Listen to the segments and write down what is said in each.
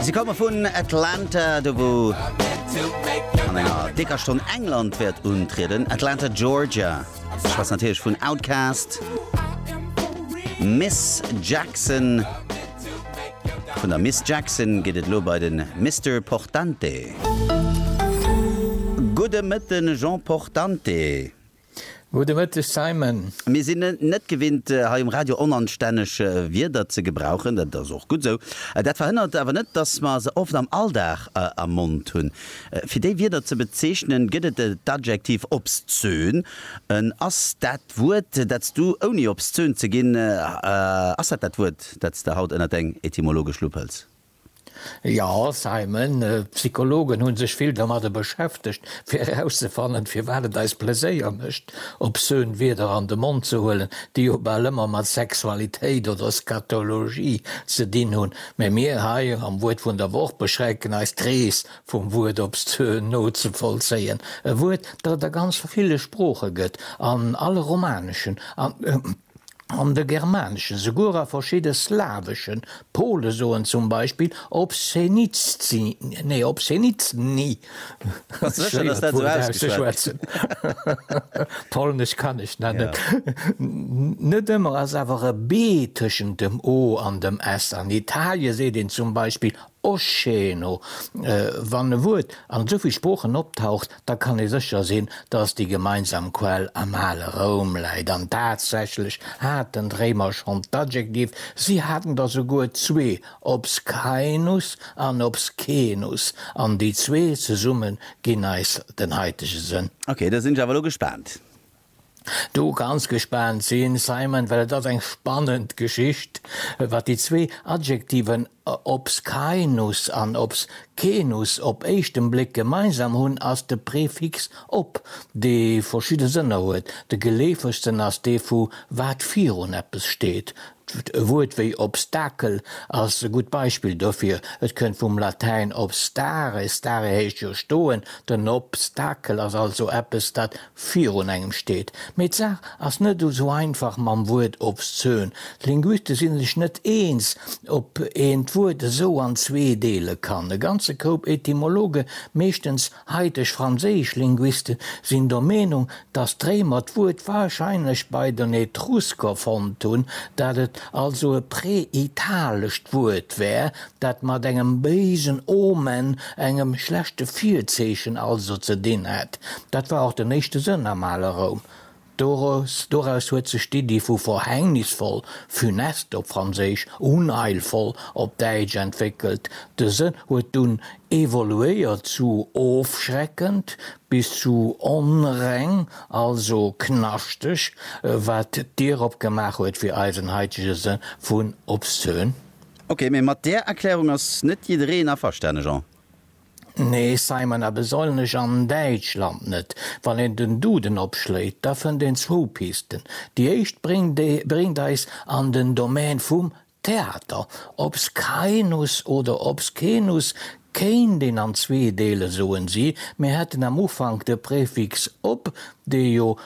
Si komme vun Atlanta, do wou an enger décker Stonn England wäert untrieden. Atlanta, Georgia. Ech schwätz natierlech vun Outkast, Miss Jackson. Vun der Miss Jackson geet et elo bei de Mister Portante. Gudde Mëtten, Jean Portante. Gudde Mëtteg, Simon. Mir sinn et net gewinnt, hei um Radio onanstänneg Wierder ze gebrauchen. Dat ass och gutt esou. Dat verhënnert awer net, dass mer se oft am Alldag am Mond hunn. Fir déi Wierder ze bezeechnen, gëtt et d'Adjektiv obszön. Ass dat Wuert, dat s du, ouni obszön ze ginn, ass dat dat Wuert, dat s de haut ënnert deng etymologesch Lupp hëls? Jo, Simon, d'Psychologen hu sech vill domadder beschäftegt, fir erauszefannen, firwat et eis Pleséier mécht, obszön Wierder an de Mond ze huelen, déi jo bal ëmmer mat Sexualitéit oder Scatologie ze dinn hunn. Mee mir hei am Wuert vun der Woch beschränken eis, d'Rees vum Wuert obszön nozevollzéien, e Wuert, dat et a ganz ville Sprooche gëtt, an alle romaneschen an. An de germaneschen, souguer a verschidde slawesche Pole soen zum Beispill obszeniztzi, nee obszeniztni, schwéier d'Wuert auszeschwätzen, Polnesch kann ech nach net. Net ëmmer ass awer e b tëschent dem o an dem s. An Italien seet een zum Beispill Oscheno, Wann e Wuert an esou vill Sproochen optaucht, da kann ee sécher sinn, datt déi gemeinsam Quell am ale Roum läit. An tatsächlech haten d'Réimer schonn d'Adjektiv, si haten der souguer zwee, obscaenus an obscenus, an déi zwee zesumme ginn eis den haitege Sënn. Ok, da sinn ech awer elo gespaant. do ganz gespaant sinn, Simon, well et ass eng spannend Geschicht, wat déi zwee Adjektiven obscaenus an obscenus op éischten Bléck gemeinsam hunn, ass de Prefix ob, dee verschidde Sënner huet. De geleefegsten ass dee vu wat virun eppes steet, D'Wuert wéi Obstakel ass e gutt Beispill dofir. Et kënnt vum Latäin obstare, stare heescht jo stoen, den Obstakel ass also eppes, dat virun engem steet. Mee d'Saach ass net esou einfach mam Wuert obszön. D'Linguiste si sech net eens, ob een d'Wuert esou an zwee deele kann. E ganze Koup Etymologe, meeschtens Haiteg franséisch Linguiste sinn der Meenung, datt d'Réimer d'Wuert warscheinlech bei den Etrusker fonnt hunn, dat et also e präitalescht Wuert wär, dat mat engem béisen Omen, engem schlechte Virzeechen also, ze dinn hätt. Dat war och den éischte Sënn am ale Roum, Doraus, doraus huet sech d'Iddi vu verhängnisvoll, funeste op Franséisch, unheilvoll op Däitsch, entwéckelt. De Sënn huet dunn evoluéiert zu ofschreckend bis zu onreng, also knaschteg, wat d'Dier opgemaach huet fir eisen haitege Sënn vun obszön. Ok, mee mat där Erklärung ass net jiddereen averstane, Jean. Nee Simon, a besollnech an Däitschland net. Wann een den Duden opschléit, da fënnt een zwou Pisten. Déi éischt bréngt eis an den Domän vum Theater. Obs Kainus oder obs Kenus kéint een an zwee deelen, soen si, mir hätten am Ufank de Prefix op, dee jo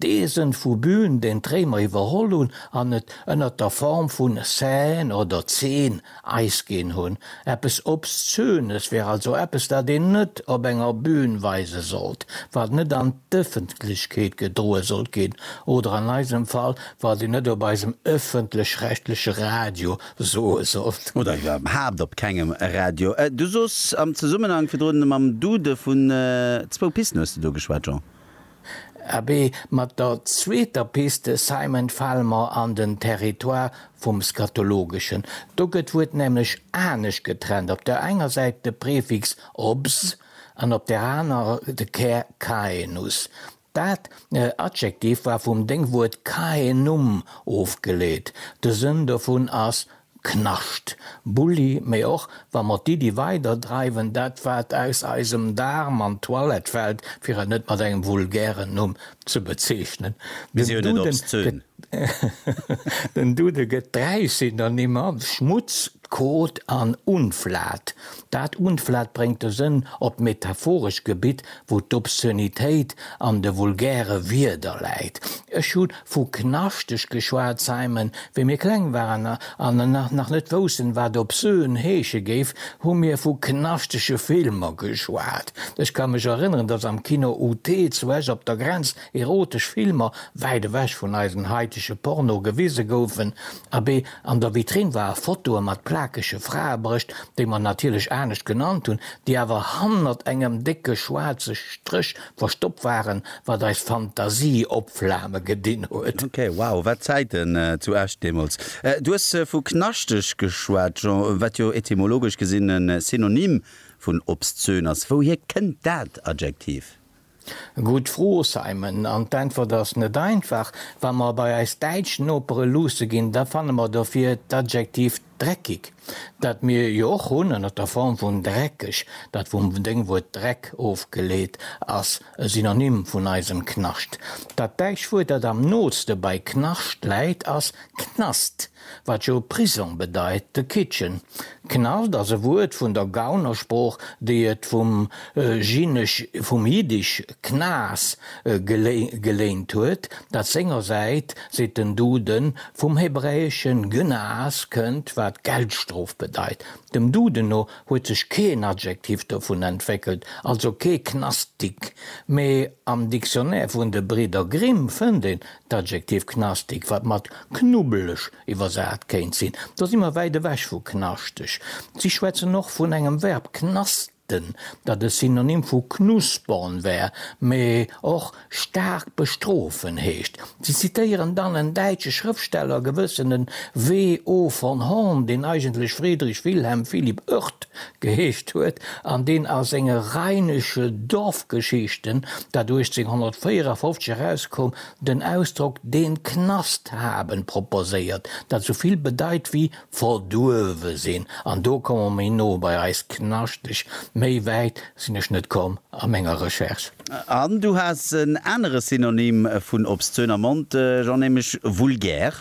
D'Eesen vu Bühn den d'Réimer iwwerholl hunn an et ënnert der Form vun Seine oder Zeen Eis ginn hunn. Eppes Obszönes wär also eppes, dat een net op enger Bühn weise sollt, wat net an d'Ëffentlechkeet gedroe sollt ginn oder an eisem Fall, wat een net op eisem ëffentlech-rechtleche Radio soe sollt. Oder iwwerhaapt op kengem Radio. Du soos am Zesummenhang virdrun mam Dude vun zwou Pisten, hues de do geschwat, Jean? Abee, mat der zweeter Piste Simon fale mer an den Territoire vum Scatologeschen. Do gëtt d'Wuert nämlech anescht getrennt, op der enger Säit de Prefix obs an op där anerer de Kär caenus. Dat Adjektiv war vum Déngwuert caenum ofgeleet, de Sënn dovun ass Knascht, Bulli, mee och wa mer d'Iddi weider dreiwen, dat wat aus eisem Daarm an d'Toilette fällt, fir et net mat engem vulgären Numm ze bezeechnen, den Duden gëtt dräi Synonymmer, Schmutz, Kot an Unflat. Dat Unflat bréngt de Sënn op d'metaphorescht Gebitt, wou d'Obszönitéit an de vulgäre Wierder läit. Ech hu Vu knaschteg geschwat, Simon. Wéi mir kleng waren an nach net woussen, wat obscen heesche géif, hu mir vu knaschtege Filmer geschwat. Ech ka mech erënneren, dass am Kino UT zu Esch op der Grenz erotesch Filmer, wäit ewech vun eisen haitege Porno, gewise goufen. Abee, an der Vitrinn war e Fotoe mat plakege Fraebrëscht, déi mer natierlech anescht genannt hunn, déi awer hannert engem décke schwaarze Stréch Verstoppt waren, wat eis Fantasie op Flame gedinn huet. Ok, wow, wat Zäiten zu Esch deemools. Du hues vu knaschteg geschwat, Jean, wat jo etymologesch gesinn e Synonym vun obszön ass. Wouhier kënnt dat Adjektiv? Gutt Fro, Simon, an d'Äntwert ass net einfach. Wa mer bei eis däitsch Nopere luusse ginn, da fanne mer dofir d'Adjektiv dreckig, dat mir jo och hunn, ënnert der Form vun dreckeg, dat vum Déngwuert Dreck ofgeleet ass, e Synonym vun eisem Knascht. Dat däitscht Wuert, dat am nooste bei Knascht läit, ass Knast, wat jo Prisong bedeit, de Kitchen. Knast ass e Wuert vun der Gaunersprooch, déi et vum Jiddisch, d'Knas geléint huet, dat sengersäit, seet den Duden, vum hebräesche Gnas kënnt, wat Geldstrof bedeit. Dem Duden no huet sech keen Adjektiv dovun entwéckelt, also kee Knastik, mee am Dictionnaire vun de Bridder Grimm fënnt een d'Adjektiv knastig, wat mat knubbeleg iwwersat kéint sinn. Do si mer wäit ewech vu knaschteg. Si schwätzen och vun engem Verb, knastern. den, dat e Synonym vu knuspern wär, mee och staark bestrofen heescht. Si zitéieren dann en däitsche Schrëftsteller, gewëssene W. O. von Horn, deen eigentlech Friedrich Wilhelm Philipp Oerth geheescht huet an deen a senge Rheinische Dorfgeschichten, dat 1854 erauskoum, den Ausdrock den Knast haben proposéiert, dat esou vill bedeit wéi Verduerwe sinn, an do komme mer méi no bei eis Knaschteg. Méi wäit sinn ech net komm a menger Recherche. An du has en anere Synonym vun obszön am Mond, Jean, nämlech vulgär.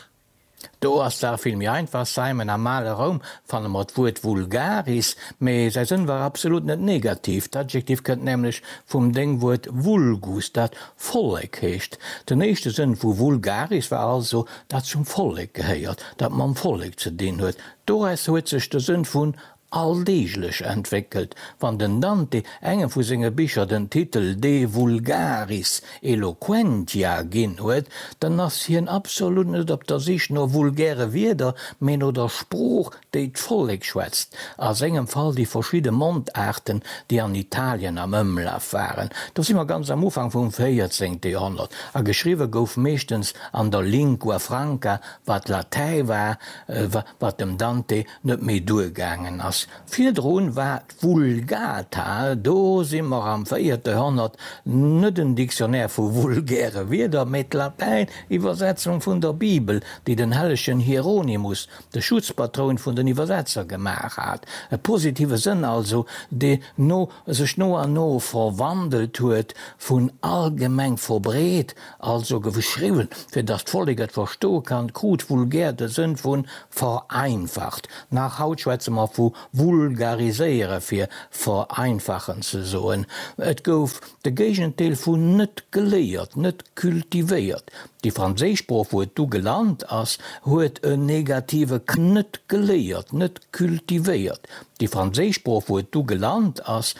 Do ass d'Saach vill méi einfach, Simon, Am ale Roum fanne mer d'Wuert vulgaris, mee säi Sënn war absolut net negativ. D'Adjektiv kënnt nämlech vum Déngwuert vulgus, dat Vollek heescht. Den éischte Sënn vu vulgaris war also dat zum Vollek gehéiert, dat mam Vollek ze dinn huet, doraus huet sech de Sënn vun alldeeglech entwéckelt. Wann den Dante engem vu senge Bicher den Titel De vulgaris eloquentia ginn huet, dann ass hien absolut net op der Sich no vulgäre Wierder, mee no der Sprooch déi d'Vollek schwätzt, a sengem Fall déi verschidde Mondaarten, déi an Italien am Ëmlaf waren, do si mer ganz am Ufank vum véierzéngte Joerhonnert, a geschriwwe gouf meeschtens an der Lingua franca, wat Latäi war, wat dem Dante net méi duergaangen ass. Virdru war d'Vulgata, do si mer am véierte Joerhonnert, net en Dictionnaire vu vulgäre Wierder, mä d'Latäin-Iwwersetzung vun der Bibel, déi den hellegen Hieronymus de Schutzpatroun vun den Iwwersetzer gemaach hat, e positive Sënn also, dee no sech no an no verwandelt huet, vun allgemeng verbreet, also geschriwwen, fir datt d'Vollek et verstoe kann, krut vulgär de Sënn vu vereinfacht. Nach haut schwätze mer vu vulgariséiere fir vereinfachen ze soen. Et gouf de Géigendeel vun net geléiert, net cultivéiert. Déi franséisch Sprooch, wou et du gelant ass, huet en negative k. Net geléiert, net cultivéiert. Déi franséisch Sprooch, wou et du gelant ass,